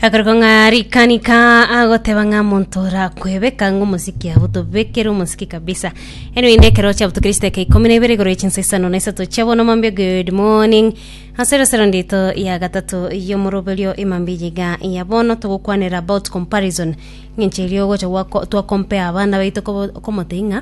akariko ng'a rikanika agoteba ng'a monto rakwebeka ng'a omosiki abo tobekere omosiki kabisa eno inde ekero chiabuto kristo eke ikomi na ibere igoro echinsa isano na isato chiabono mambia good morning ase resero ndito ya gatato yomoroberio emambia eyiga ya bono togokwanera about comparison ng'enche erio ogocha gwako twakompea abana baito kobo- komotebia ng'a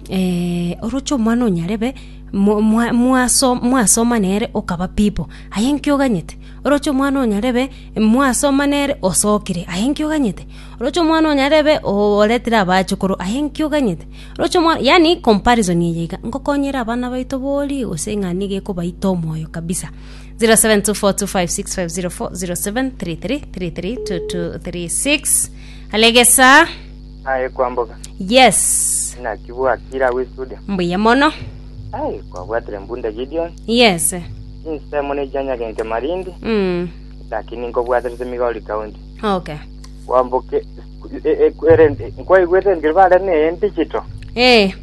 eh, oroche omwana onyarebe mo- mwa- mwaso- mwasoma nere okaba pipo aye inki oganyete Oroche omwana o nyarebe, mwasoma nere, osokire, aye inki oganyete? Oroche omwana o nyarebe, oretire abachukoro, aye inki oganyete? Oroche omwa-, yaani comparison eye iga, ngokonyere abana baito bori, gose ng'a nigo ekobaita omoyo kabisa. 07242565040733332236 Halo egesaa. Aye kwamboga. Yes. Naki bwakire agwo estudio. Mbuya mono. Aye kwabwatire mbunde Gideon. Yes. Ensemo ne chianyagente marindi, Mm. lakini nkobwaterete Migori County. Okay. Kwamboke e- e- ere- nkwaigwete engeri bare ne digital. Eh.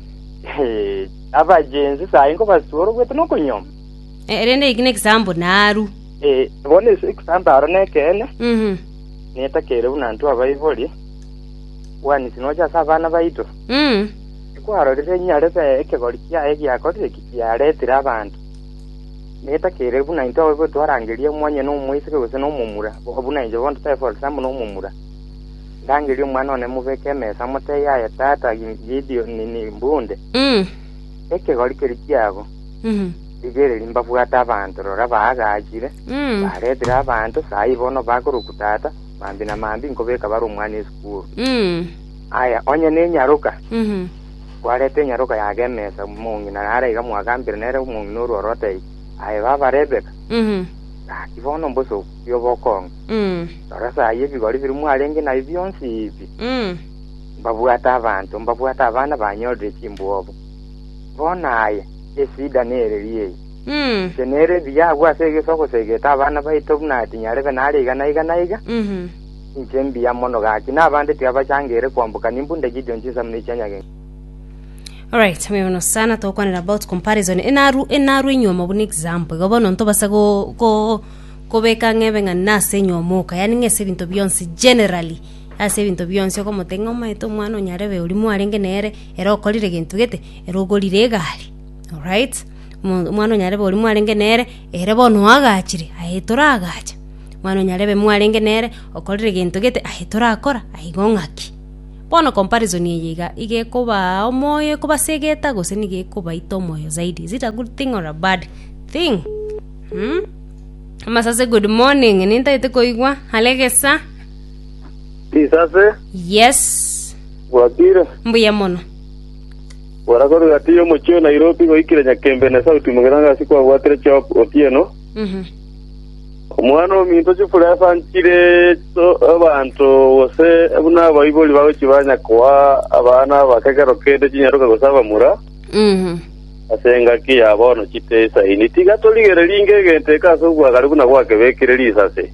Eh, abagenzi sayi nkobasuora ogwete nokonyoma. Eh, rende iki nekisambo naru. Eh, bono ase ekisambaro nekeene, Mhm. netakeire buna ntwe abaibori, bwanisi nocha ase abana baito. Mm. Ekwarorire nyarebe ekegori kiaye giakorire ki? yaretire abanto, netakeire buna intwe ababibori twarangeria omwanyene omoiseke gose nomomura, buna inche bono totaefaa ore sambo nomomura. Ndangerie omwana one mobeke emesa motebie aye tata Gideoni mbunde Mm. ekegori keria kiabo. Mhm. Rigereria mbabwate abanto, rora baagachire, Mm. baretire abanto, sayi bono bakoroku tata, mambi na mambi nkobeka bare omwana esukuru. Mm. Aya, onye nenyaroka, Mhm. Kwareta enyaroka ya Gemesa, omong'ina nare iga mwagambire nere omong'ina orwa orotei, Aye baba Rebeka, gaki bono mbose obuya obokong'u. Rora sayi ebigori biria mwarenge nabio bionsi ibi, mbabwate abanto, mbabwate abana banyorire chimbwobo. Bono aye, esida nereri eye, inche nere ebiya agwo ase egesogo segete abana baito buna tinyarebe nare iga na iga na iga. Inche mbuya mono gaki, na abande tiabachangeire kwamboka, nimbua ndaki echitunwa chinsamu ne echia nyagento. Alright, obe bono sana togokwanera about comparison enaru enaru enyuomo buna example igo bono ntobase go, go kobeka ng'ebe ng'a nase enyuomo oka yaani ng'a ase ebinto bionsi generally ase ebinto bionsi okomotebia ng'a omaete omwana onyarebe oria mwarenge nere ere okorire gento gete ere ogorire egari alright, omo omwana onyarebe oria mwarenge nere. Ere bono oagachire, aye toraagache. Mwana o nyarebe mwarenge nere, okorire gento gete, aye torakora, aigo ng'aki? Bono comparison eye iga iga ekobaa omoyo ekobasegeta gose nigo ekobaita omoyo zaidi? Is it a good thing or a bad thing? Uhm? Amasase good morning, nintaete koigwa are gesa. Risase, Yes, bwakire. mbuya mono. Gora korwa egati y'omochie o Nairobi goikire Nyakembe na Sauti Mugirango ase kwabwatire Job Otieno, omwana ominto chifura esanchire abanto gose buna abaibori bagochia banya koa abana aba kekero kende chinyaroka gose abamura ase engaki ya bono chiteisaini. Tiga torigererie inge egento eke ase obwagare buna gwakebekire risase.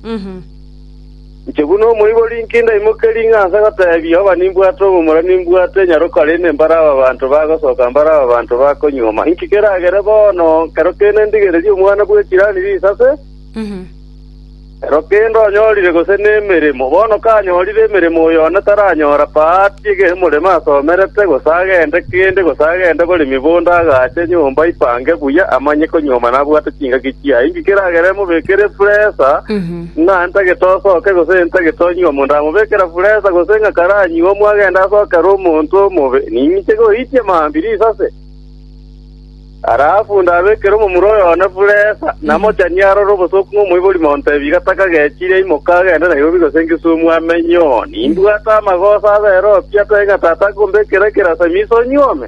Inche buna omoibori inki ndaimokerie ng'a nse goteebia Yehova nimbwate omomura nimbwate nyaro korende mbare aba banto bagosoka mbare aba banto bakonyuoma? Inki keragere bono ekero kende ndigererie omwana bwe chirani risase? Ekero kende onyorire gose nemeremo. Bono kanyorire emeremo oyo one taranyora paa atiege omorema asomerete, gose agende kende, gose agende bore mibondo agaache nyomba aipange buya, amanye konyuoma nabwate chingaki chiaye. Inki keragere mobekere presa? Ng'a ntagete osoke gose ntagete onywe omonto amobekera furesa, gose ng'a karanywe omwagenda asokerwe omonto omobe, ninche goitia mambirisi ase? Arafu ndabekere omomura oyone furesa, namochanie arore obosooku ng'omoibori monto ebi, gataka gechire, imoka agende Nairobi gose Kisumu amenye oo. Nimbwate amagoso abere oo pi, atoe ng'a tata akombekera ekerasimi ase onyuome.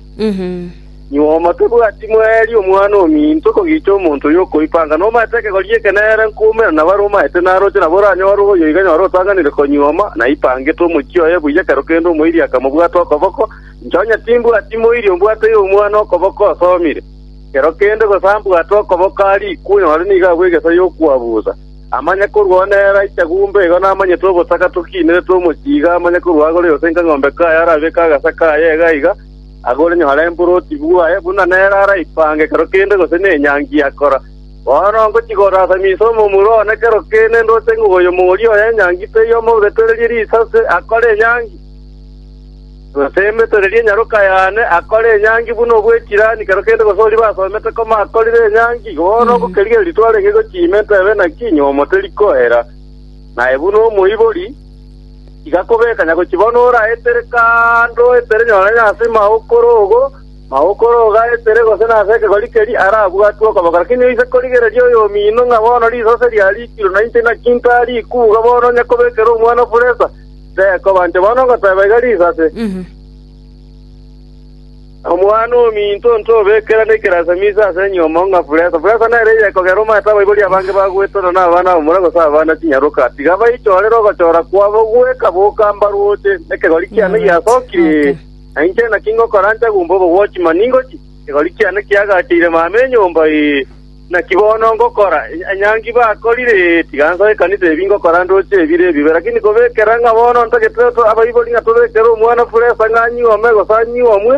Nyuma omo tebwati moeeri Omwana ominto kogicha omonto oyo okoipa, anga nomaete ekegori gi'ekeneera nkoumera nabo are omaete naroche, nabo oranyore oyo iga nyore otanganire konyuoma, naipangete omochie oye buya ekero kende omoiri akamobwata okoboko, inche onye timbwati moiri ombwate y'Omwana okoboko osomire. Ekero kende gose ambwate okoboko arikwe, nyore nigo abue egesa y'okwabutha. Amanye korwao nere aiche gumbe, igo namanyete obosaka tokiinerete omochie iga, amanye korwao agore yose inka ng'ombe kaye arabeke agasa kaye iga iga, Agore nyore emboroti bwaye, buna nere araipange ekero kende gose nenyangi akora. Bono ngochia gosasamia inse omomura one kero kende ndoche ng'a oyo mogoria oye enyangi teiyo omobetererie risase akore enyangi, gose emetererie enyaroka yane akore enyangi buna obw'echirani kero kende gose oria basomete koma akorire enyangi. Bono ngokerigereria twarenge gochia ime ntebe naki, nyomoteri koera, naye buna omoibori. Tiga kobeka nyagochi bono ore aetere kando etere nyore nonya ase maokoro ogo, maokoro ogo aetere gose nase ekegori keria arabwatwe okoba. Lakini oise korigereria oyomino ng'a bono risase riarikirwe na inche naki nkaa rikuuga bono onye kobekera omwana furesa, tekoba inche bono ngoteba iga risase. Omwana ominto ntobekera nekerasa miiso ase enyiomo ng'a furesa. Furesa nere eye ekogera omanyete abaibori abange bagweterwa n'abana b'abamura gose abana chinyaroka. Tiga baichorere ogochora kwabo goeka boka mbarwoche. Ekegori kiane giasokire, na inche naki ngokora nchagumba obogwochi, mani ngochie. Ekegori kiane kiagacheire mama enyomba, ee. Naki bono ngokora onye ngibakorire, tiga nsoe ekanisa ebi ngokora ndoche ebire ebibe. Lakini kobekera ng'a bono ntagete abaibori ng'a tobekere omwana furesa ng'a anyuome gose anyuomwe,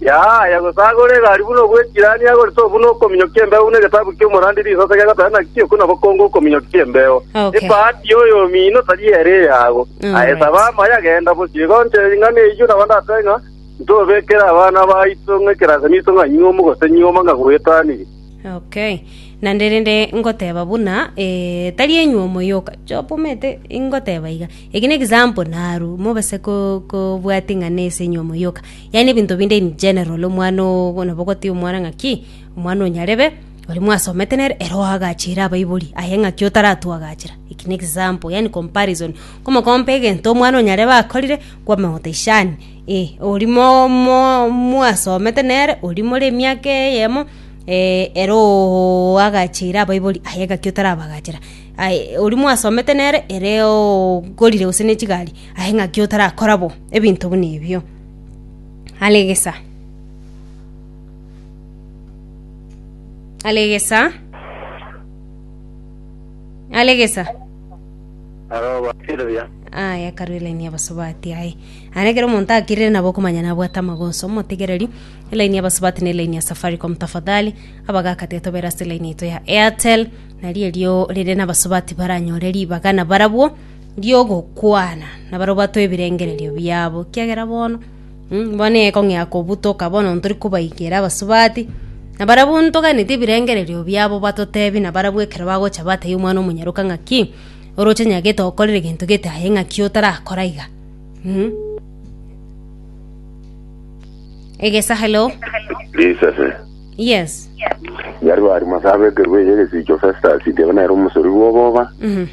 yaaya, gose agore egari buna obwe chirani agorete obu nokominyokia embeo buna egetabu ki'omorandi risase gegoteba ng'a kio buna bokongu okominyokia embeo. Okay. Ebahati y'oyomino tari ere eyago. Aye Alright. saba amaya, genda bosio. Igo nche ing'ana eyio nabo ndatebe ng'a Ntobekere abana baito ng'a ekerasani iso ng'a nyiomu gose nyioba ng'a gwetanirie. Okay. Naende rende ngoteba buna eh, tari enyuomo yoka Job omanyete ingoteba iga eki n'example naru mobase ko kobwati ng'a nese enyuomo yoka yaani ebinto binde in general omwana oo nabo ogotebi omwana ng'a ki omwana o nyarebe oria mwasomete nere ere oagachiire abaibori aye ng'a ki otaratuagachera eki n'example yaani comparison komokompa egento omwana o nyarebe akorire kw'amagota ishaani, ee, oria mo- mo- mwasomete nere, oria more emiaka eyemo, ere oo agacheire abaibori, aye gaki otarabagachera, aye oria mwasomete nere ere oo okorire gose ne chigari, aye ng'aki otarakora bo, ebinto buna ebio. Are gesa, are gesa, are gesa. Arobateebia, Aye akaroiraini abasubati aye. Aya nekero omonto akirire nabo okomanya nabwate amagonso omotegereri. Elaini ya basubati ne elaini ya Safaricom tafadhali. Abagaka tiga tobera ase elaini yaito ya Airtel. Nari erio rire nabasubati baranyore ribaga nabarabwo riogokwana nabarobwatwe ebirengererio biabo. Kiagera bono Bono ekong'ea kobutoka bono ntori kobaikera abasubati, na barabwo ntoganeti ebirengererio biabo batotebi, na barabwo ekero bagocha batebie Omwana-o-monyaroka ng'aki, oroche nyagete okorere gento gete aye ng'aki otarakora iga. Egesa hello. Risase. Yes. Yari bari masabekerwe eye egesicho Festus igebe nere omosori bw'oboba. Mhm.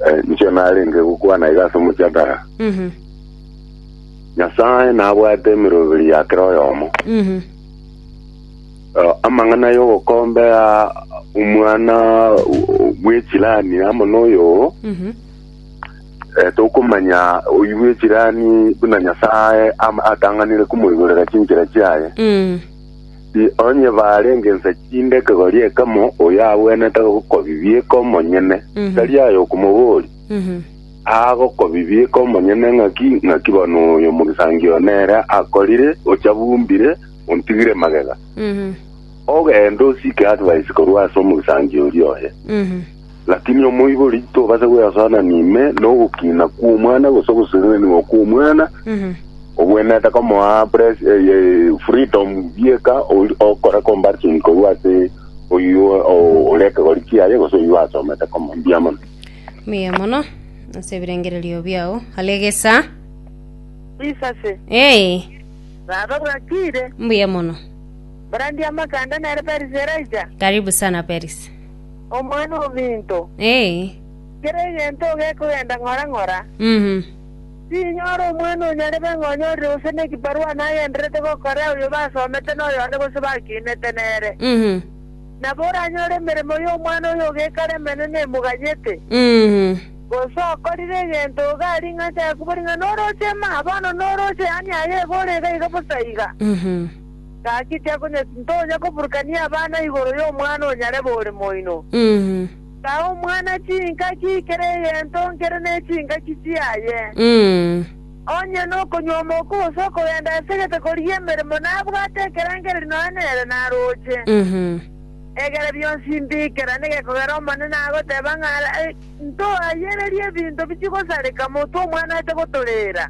Eh, inche narenge gokwana iga ase omochadara Mhm. nyasae nabwate emeroberi ya kera oyomo Mhm. Eh, amang'ana y'ogokombea omwana o- bw'echirani amo n'oyo Mhm. eh, tokomanya oyi bw'echirani buna nyasae ama- atang'anire komoigorera chinchera chiaye Mm. Ti onye baarenge inse chinde ekegori ekemo, oyagwenerete gokobibi eke omonyene, tari aye okomoboria. Agokobibi eke omonyene ng'aki, ng'aki bono oyo omogisangio oo nere akorire, ochabumbire, ontigire magega. Ogende osike advice korwa ase omogisangio oria oye. Lakini omoibori tobasa gweasanania ime nogokiina kw'omwana gose ogosesenenigwa kw'omwana obwenerete komoa pres- eh, eh, freedom bieka ori- okore comparison korwa ase oyio o- ore ekegori kiaye gose oyio asomete komo mbuya mono Mbuya mono ase ebirengererio biao. Alegesa. Bisase. Ee, Baba bwakire. mbuya mono. Brandi ya makanda nere Paris eraija. Karibu sana Paris. Omwana ominto, Ee. kera egento gekogenda ng'ora ng'ora, Mhm. tinyora omwana onyarebe ng'a onyorire gose nekibarua nagendererete gokora oyo basomete na oyonde gose bakinete nere. Mhm. Nabo oranyore emeremo y'omwana oyo ogekara emenene emoganyete, Mhm. gose okorire egento iga aria ing'a achake kobori ng'a noroche maa, bono noroche yaani aye ebe ore iga iga bosa iga. Mhm. Gaki tiakonye tintonya koburukania abana igoro y'omwana onyarebe ore moino. Taa omwana chingaki kera egento nkere ne chingaki chiaye. Onye nokonywa omoko gose okogenda asegete korigia emeremo nabwate ekerengererio nonya nere naroche. Egere bionsi mbikera negekogera Omonene agoteba ng'a ntoayererie ebinto bichigosareka motwe omwana aete gotorera.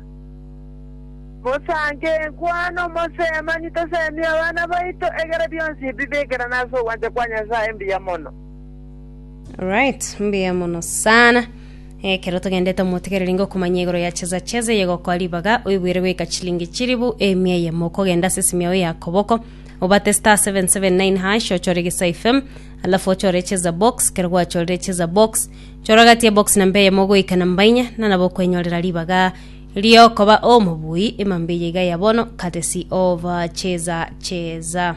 Mosange enkwana omosemani tosemie abana baito egere bionsi bibekerane ase ogwancha kwa Nyasaye mbuya mono. Alright, mbuya mono sana. Ekero togendete omotigereri ingo okomanya igoro ya chesa chesa eye gokoa ribaga oibwere goika chilingi chiribu emia eyemo okogenda ase esimi yao ya koboko obate star 779 hash ochore gisa FM alafu ochore chesa box kero gwachorire chesa box chora gati ya box namba eyemo goika namba inya na nabo okwenyorera ribaga Ri'okoba omobui ema mbuya iga ya bono, courtesy of Cheza Cheza.